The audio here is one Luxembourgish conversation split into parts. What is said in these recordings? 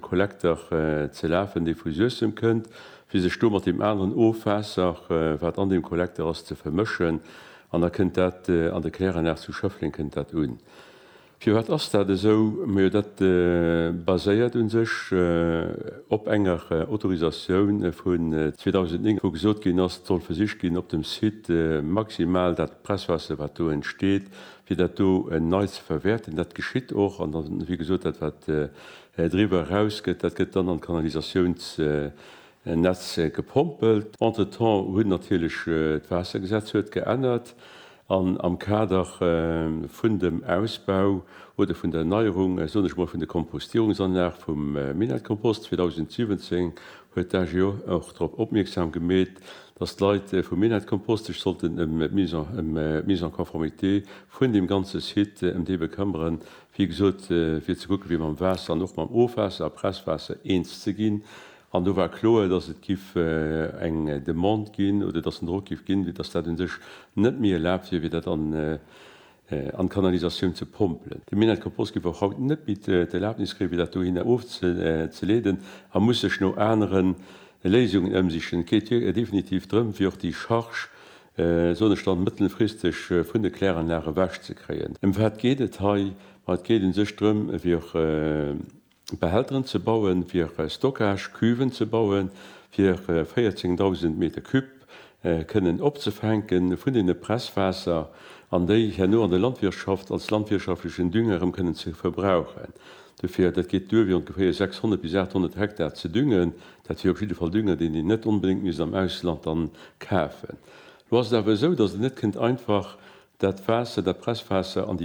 Kollekter ze lafen, dee vu Suessem kënnt, fir sech do mat deem aneren Ofwaasser, wat an deem Kollekter ass, ze vermëschen. An da kënnt dat an de Kläranlag zu Schëffleng kënnt dat un. Firwat ass dat esou? Majo dat baséiert u sech op enger Autorisatioun vun 2009, wou gesot ginn ass, et soll versicht ginn op dem Site maximal dat Presswaasser, wat do entsteet, fir dat do nei ze verwäerten. Dat geschitt och. An da wéi gesot, dat wat Driwwer eraus gëtt, dat gëtt dann an d'Kanalisatiounsnetz gepompelt. Entretemps huet natierlech d'Waassergesetz huet geännert an am Kader vun dem Ausbau oder vun der Erneierung, soen ech mol, vun de Kompostierungsanlag vum Minettekompost 2017 huet d'AGO och drop opmierksam gemeet, dass d'Leit vum Minettekompost sech sollten ëm d'Mise en conformité vun deem ganze Site, ëm dee bekëmmeren, Wéi gesot, fir ze kucke fir mam Waasser an och mam Ofwaasser a Presswaasser eens ze ginn. An do war kloer, datt et giff eng Demande ginn oder datt en Drock giff ginn, fir datt dat un sech net méi erlaabt wier, fir dat an an d'Kanalisatioun ze pompelen. De Minett Compost giff och haut net méi d'Erlaabnis kréie fir dat dohinner ofzeleeden a muss sech no anere Léisungen ëmsichen. Et geet definitiv drëm, fir och déi Charge soen ech dann, mëttelfristeg vun de Kläranlage ewech ze kréien. Ëm wat geet et hei? Ma et geet u sech drëm, fir Behälteren ze bauen, fir Stockage-Cuven ze bauen, fir 14.000 Meter Cube kënnen opzefänke vun deene Presswaasser an déi herno an der Landwirtschaft als landwirtschaftlechen Dünger erëm kënnen ze verbrauchen. Dofir, dat geet duer, fir ongeféier 600 bis 800 Hektar ze düngen, Dat wier op jidde Fall Dünger, deen een net onbedéngt misst am Ausland dann kafen. Lo ass et awer esou, dass een net kënnt einfach dat Waasser, dat Presswaasser an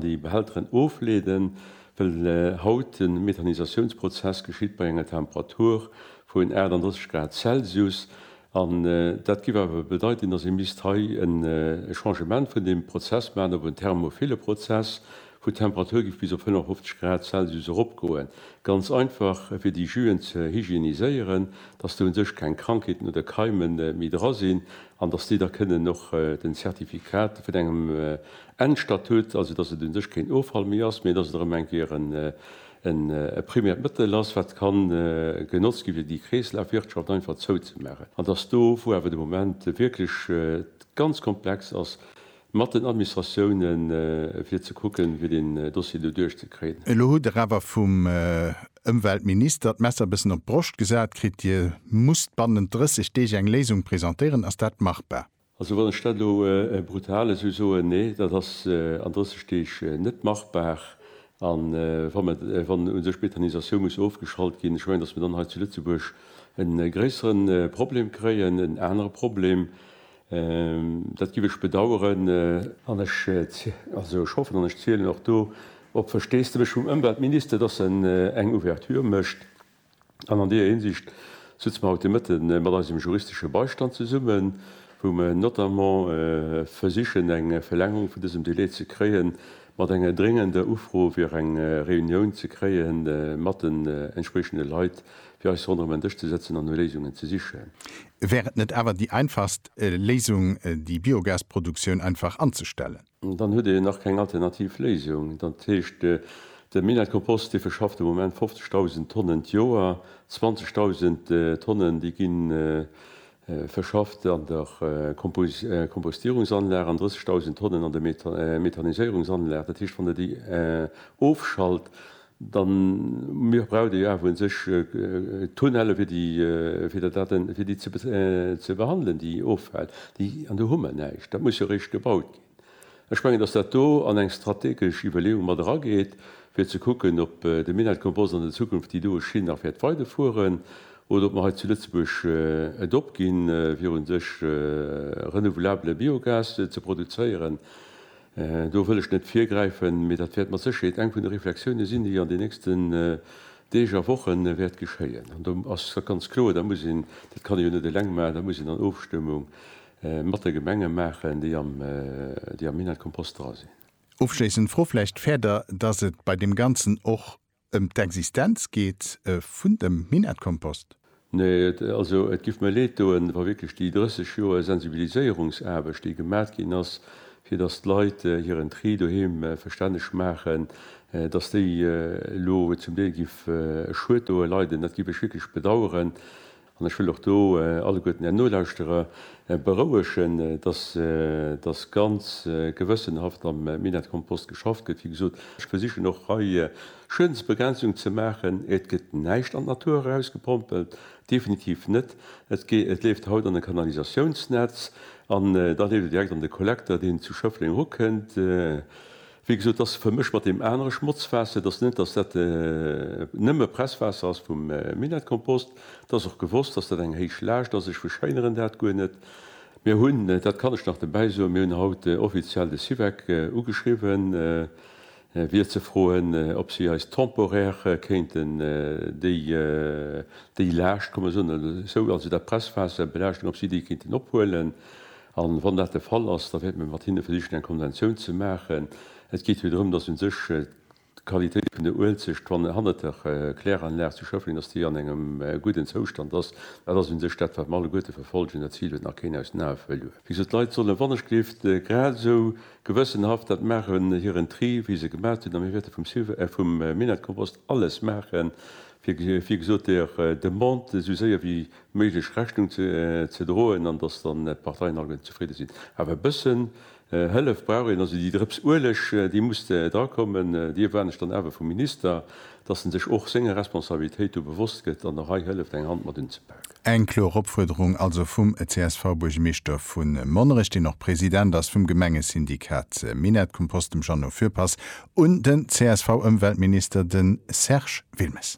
déi Behälteren ofleeden, well haut de Methanisatiounsprozess geschitt bei enger Temperatur vun 38 Grad Celsius. An dat géif awer bedeiten, dass ee misst hei e Changement vun deem Prozess maachen op en thermophile Prozess, Vu d'Temperatur giff bis op 55 Grad Celsius erop goen. Ganz einfach fir déi Juen ze hygieniséieren, dass do un sech keng Krankheeten oder Keimen méi dra sinn an dass déi da kënnen och den Certificat vun engem Endstatut, also dass et un sech keen Offall méi ass, mee dass et erëm eng Kéier en primäert Mëttel ass wat kann genotzt gi fir déi Kreeslafwirtschaft einfach zou ze maachen. An dass do wou awer de Moment wierklech ganz komplex ass, Mat den Administratiounen, fir ze kucken, fir deen Dossier do duerchzekriegen. Elo hutt Der awer vum Ëmweltminister d'Messer e bëssen op d'Broscht gesat kritt. Dir musst bannent 30 Deeg eng Léisung presentéieren. Ass dat machbar? Also, wann ech dat elo brutal esou soen, Nee, dat ass an 30 Deeg net machbar. A wa mer, wann u sech d'Methanisatioun muss ofgeschalt ginn, ech mengen, datt mer dann hei zu Lëtzebuerg e gréissere Problem kréien, en anere Problem, Dat giff ech bedaueren an ech hoffen an ech zielen och do op d'Versteesdemech vum Ëmweltminister, dass en eng Ouverture mécht. An an deeër Hinsicht sëtze mer haut de Mëtte mat eisem juristesche Beistand zesummen, wou mer notamment versichen eng Verlängerung vun dësem Delai ze kréien, mat enger dréngender Ufro fir eng Reunioun ze kréie mat den entspriechende Leit fir eis ronderëm en Dësch ze sëtzen an no Léisungen ze sichen. Wär et net awer déi einfachst Léisung, déi Biogasproduktioun einfach anzestellen? Dann huet een nach keng alternativ Léisung. Dat heescht, de Minett-Kompost, dee verschafft de Moment 50.000 Tonnen d'Joer. 20.000 Tonnen, déi gi verschafft an der Kompostierungsanlag an 30.000 Tonnen an der Methaniséierungsanlag. Dat heescht, wann Der déi ofschalt, Da mir braucht ee jo awer u sech Tunnelle fir déi, fir der Daten, fir déi ze behandelen, déi offält, déi, an do hu mer näischt. Dat muss jo eréischt gebaut ginn. Ech mengen, datt dat do an eng strategesch Iwwerleeung mat erageet, fir ze kucken, ob de Minett Compost an der Zukunft déi doe Schinn nach wäert weiderfueren oder ob mer hei zu Lëtzebuerg et opginn, fir u sech renouvelabbele Biogas ze produzéieren. Do wëll ech net virgräifen, mee dat wäert mat Sécherheet eng vun de Reflexiounen sinn, déi an den nächsten Deeg a Woche wäert geschéien. An do ass et ganz kloer, da muss een, dat kann ee jo net eleng maachen, da muss een an Ofstëmmung mat de Gemenge maachen, déi am Minett-Kompost dra sinn. Ofschléissend Fro vläicht, Fäert Der, dass et bei deem Ganzen och Ëm d'Existenz geet vun dem Minettkompost. Nee, also et giff mir leed doen, wa wierklech déi 30 Joer Sensibiliséierungsaarbecht, déi gemat ginn ass, fir dass d'Leit hiren Tri doheem verstänneg maachen, dass déi elo zum Deel giff e Schued doe leiden. Dat giff ech wierklech bedauern. An ech wëll och do alleguerten Är Nolauschterer berouegen, dass da ganz gewëssenhaft am Minett-Kompost geschafft gëtt. Wéi gesot, ech versichen och hei Schuedensbegrenzung ze maachen. Et gëtt näischt an d'Natur erausgepompelt, definitiv net. Et leeft haut an e Kanalisatiounsnetz an da leeft et direkt an de Kollekter, deen zu Schëffleng erukënnt. Wéi gesot, dass vermëscht mat deem anere Schmotzwaasser, dass net, dass dat nëmme Presswaasser ass vum Minettekompost. Et ass och gewosst, dass dat eng héich Laascht ass. Ech verschéineren dat guer net. Mir hunn, dat kann ech nach dobäi soen, mir hunn haut offiziell de Syvec ugeschriwwen, fir ze froen, ob si eis temporaire kéinten déi Laascht, kann mer soen, also dat Presswaasser, Belaaschtung, ob si déi kéinten ophuelen. A wann dat de Fall ass, da wäerte mir mat hinne versichen, eng Konventioun ze maachen. Et geet jo drëm, dass u sech d'Qualitéit vun der Uelzecht, wann hannert der Kläranlag zu Schëffleng, dass déi an engem gudden Zoustand ass. Dat ass u sech dat, wat mer alleguerte verfollegen. Dat Zil huet nach keen aus den Ae verluer. Wéi gesot, d'Leit sollen wannechgelift grad esou gewëssenhaft dat maachen, hiren Tri, wéi se e gemaach hunn. A mir wäerte vum Sylve, äh vum Minett-Kompost alles maachen, fir, wéi gesot, der Demande esou séier wéi méiglech Rechnung ze droen an datt dann d'Parteien alleguer zefridde sinn. Awer e bëssen Hëllef brauch een. Also déi Drëps Ueleg, déi muss drakommen. Déi erwaarden ech dann awer vum Minister, datt en sech och senger Responsabilitéit do bewosst gëtt an och hei hëlleft eng Hand mat unzepaken. Eng kloer Opfuerderung also vum CSV-Buergermeeschter vu Monnerech, deen och President ass vum Gemengesyndikat Minett-Kompost, dem Jeannot Fürpass, un den CSV-Ëmweltminister, de Serge Wilmes.